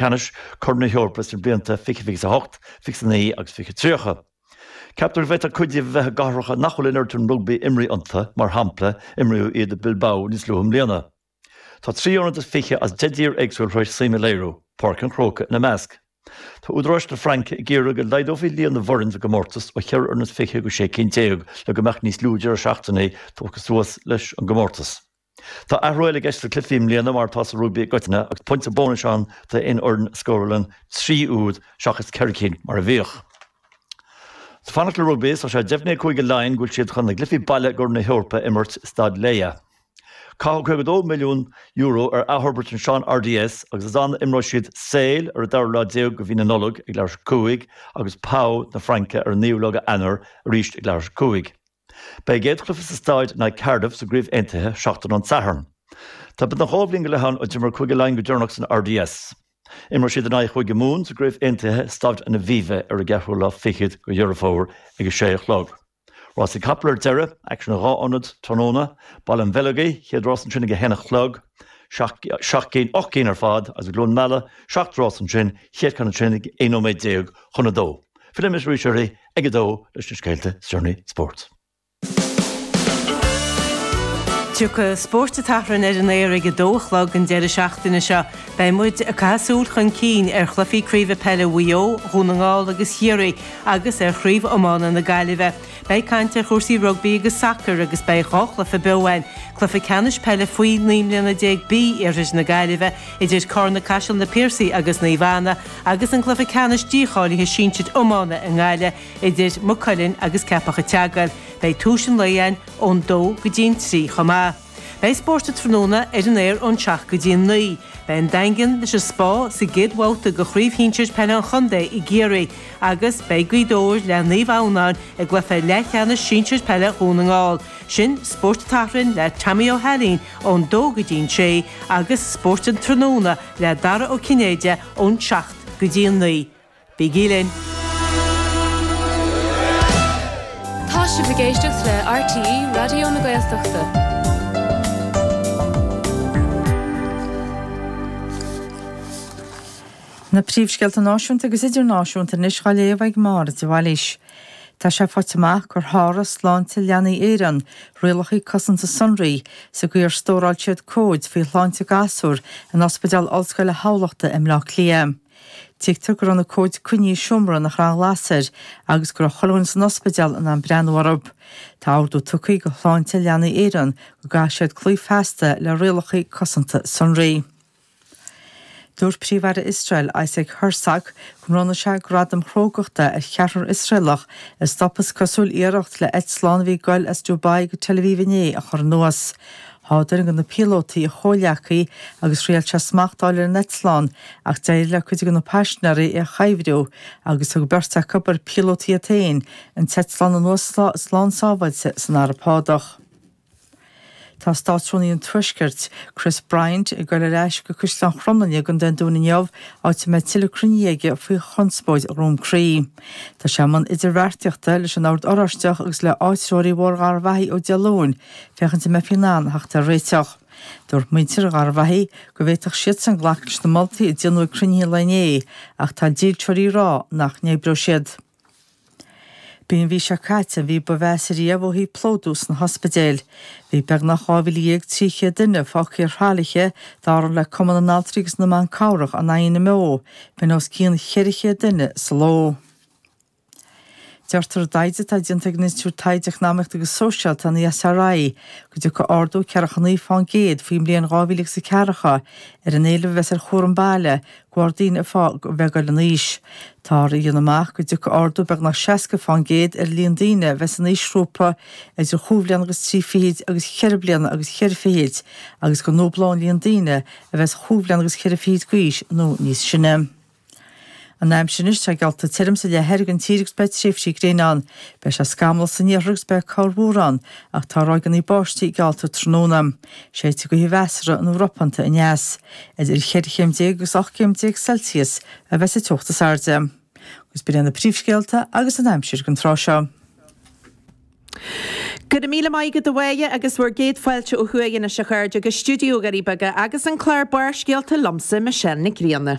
Ceannais Choirn na hEorpa sna blianta 2028, 2029 agus 2030. Ceaptar go bhféadfadh cuid díobh a bheith i gcathracha nach bhfuil an oiread sin rugbaí imrithe iontu, mar shampla, imríodh iad i Bilbao níos luaithe i mbliana. Tá trí ionad is fiche as deich dtír éagsúil tar éis suim a léiriú, Páirc an Chrócaigh ina measc. Tá údaráis na Fraince ag iarraidh go laghdófaí líon na bhfoireann sa gcomórtas ó cheithre fhoireann is fiche go sé cinn déag le go mbeadh níos lú deireadh seachtaine tugtha suas leis an gcomórtas. Tá athrú eile i gceist sna cluichí i mbliana mar atá sa rugbaí i gcoitinne agus pointe bónais ann d'aon fhoireann a scórálann trí úd seachas ceithre cinn mar a bhíodh. Ag fanacht le rugbaí, tá sé deimhnithe ag Cúige Laighean go bhfuil siad chun a gcluichí baile i gCorn na hEorpa a imirt i Staid Laya. Caitheadh €52 milliún ar athfhorbairt an Sean RDS agus is ann a imreoidh siad Sale ar an dara lá déag de mhí na Nollag ag leathuair tar éis a cúig agus Pau na Fraince ar an naoú lá de Eanáir arís ag leathuair tar éis a cúig. Beidh an chéad chluiche sa staid in aghaidh Cardiff sa gCraobh Aontaithe seachtain ón Satharn. Tá beagnach dhá bhliain go leith ann ó d'imir Cúige Laighean go deireanach san RDS. Imreoidh siad in aghaidh Chúige Mumhan sa gCraobh Aontaithe i Staid an Aviva ar an gceathrú lá fichead de Dheireadh Fómhair ag a sé a chlog. Rásaí capall ar deireadh, aicsean i dhá ionad, tráthnóna, Baile an Bheileogaigh, chéad rás ansin ag a haon a chlog, seacht gcinn, ocht gcinn ar fad, agus i gCluain Meala, seacht rás ansin, chéad cheann ansin ag aon nóiméad déag chun a dó. Fillfidh mise arís oraibh. Ag a dó leis na scéalta is deireanaí spóirt. Tiocfaidh Spórt an tSathairn ar an aer ag a dó a chlog an deireadh seachtaine seo. Beidh muid ag caitheamh súil chun cinn ar chluichí craoibhe peile Mhaigh Eo, Dhún na nGall agus Chiarraí agus ar chraobh iomána na Gaillimhe. Beidh caint ar chúrsaí rugbaí agus sacair agus beidh dhá chluiche beo ann, cluiche ceannais peile faoi naoi mbliana déag B iarthar na Gaillimhe idir Carna-Caiseal na Piarsaigh agus Naomh Anna, agus an cluiche ceannais dícháilithe sinsir iomána i nGaillimh idir Maigh Cuilinn agus Ceapach an tSeagail. Beidh tús an lae ann ón dó go dtí an trí chomh maith. Beidh spórt an tráthnóna ar an aer ón seacht go dtí an naoi. Beidh an Daingean leis an Spá sa gcéad bhabhta de Chraobh Shinsir Peile an Chontae i gCiarraí agus beidh Gaoth Dobhair le Naomh Adhamhnáin i gcluiche leathcheannais sinsir peile Dhún na nGall. Sin Spórt an tSathairn le Tommy Ó hAilín ón dó go dtí an sé, agus Spórt an Tráthnóna le Dara Ó Cinnéide ón seacht go dtí an naoi. Bígí linn! Tá sibh ag éisteacht le RTÉ Raidió na Gaeltachta. Na príomhscéalta náisiúnta agus idirnáisiúnta anois dhá léamh ag Máire de Bhailís. Tá sé faighte amach gur sháraigh Sláinte Leanaí Éireann rialacha cosanta sonraí sa gcaoi ar stóráil siad comhaid faoi shláinte gasúr in Ospidéal Ollscoile Thamhlachta i mBleá Cliath. Tuigtear go raibh na comhaid coinnithe i seomra nach raibh aon ghlas air agus go raibh chuile dhuine san ospidéal in ann breathnú orthu. Tá ordú tugtha do Shláinte Leanaí Éireann go gcaithfidh siad cloí feasta le rialacha cosanta sonraí. Dúirt Príomh-Aire Iosrael, Isaac Herzog, go mbronnfadh sé gradam crógachta ar cheathrar Iosraelach a stop is cosúil iarracht le eitleán a bhí ag goil as Dubai go Tel Aviv inné a chur anuas. Sháigh duine de na píolótaí a chomhghleacaí agus thriail sé smacht a fháil ar an eitleán ach d'éirigh le cuid de na paisinéirí é a chuibhriú agus thug beirt acu, ar píolótaí iad féin, an t-eitleán anuas slán sábháilte san Araib Shádach. Tá Státrúnaí an Tuaiscirt, Chris Bryant, ag goil ar ais go Caisleán Chromghlinne i gContae an Dúin inniu, áit a mbeidh tuilleadh cruinnithe aige faoi chonspóid Dhroim Crí. Tá sé i mbun idirbheartaíochta leis an Ord Oráisteach agus le áitreoirí Bhóthar Gharbhachaidh ó Dé Luain féachaint an mbeifí in ann theacht ar réiteach. Dúirt muintir Gharbhachaidh go bhféadfadh siadsan glacadh leis na moltaí a déanadh ag cruinnithe an lae inné ach tá dílseoirí ag rá nach n-oibreoidh siad. B'í an mhí seo caite an mhí ba mheasa riamh ó thaobh plódú sna hospidéil. Bhí beagnach 12,300 duine fágtha ar thralaithe, dar le Cumann na nAltraí agus na mBan Cabhrach an INMO, b'in os cionn 400 duine sa ló. Deirtear i dtaighde atá déanta ag an Institiúid Taighde Eacnamaíochta agus Sóisialta, an ESRI, go dtiocfaidh ardú 49 faoin gcéad faoin mbliain 2000 agus a ceathracha ar an éileamh a bheas ar chúram baile, de bharr an daonra a bheith ag goil in aois. Táthar á dhéanamh amach go dtiocfaidh ardú beagnach 60 faoin gcéad ar an líon daoine a bheas san aoisghrúpa idir chúig bhliana agus trí fichid agus cheithre bliana agus cheithre fichid agus go ndúblóidh an líon daoine a bheas chúig bhliana agus ceithre fichid d'aois nó níos sine. An aimsir anois, tá geallta tirim sa leath thoir den tír agus beidh tréimhsí gréine ann. Beidh sé scamallach san iarthar agus beidh corrmhúr ann, ach tá ráigeanna báistí geallta tráthnóna. Séidfidh gaoth mheasartha nó ropanta aneas, idir 14 chéim agus 18 céim Celsius a bheas an teocht is airde. Agus b'in iad na príomhscéalta agus an aimsir don tráth seo. Go raibh míle maith agat a Mháire agus bhur gcéad fáilte ó thuaidh anois a chairde go Stiúideo Dhoirí Beaga agus an clár Barrscéalta liomsa, Michelle Nic Grianna.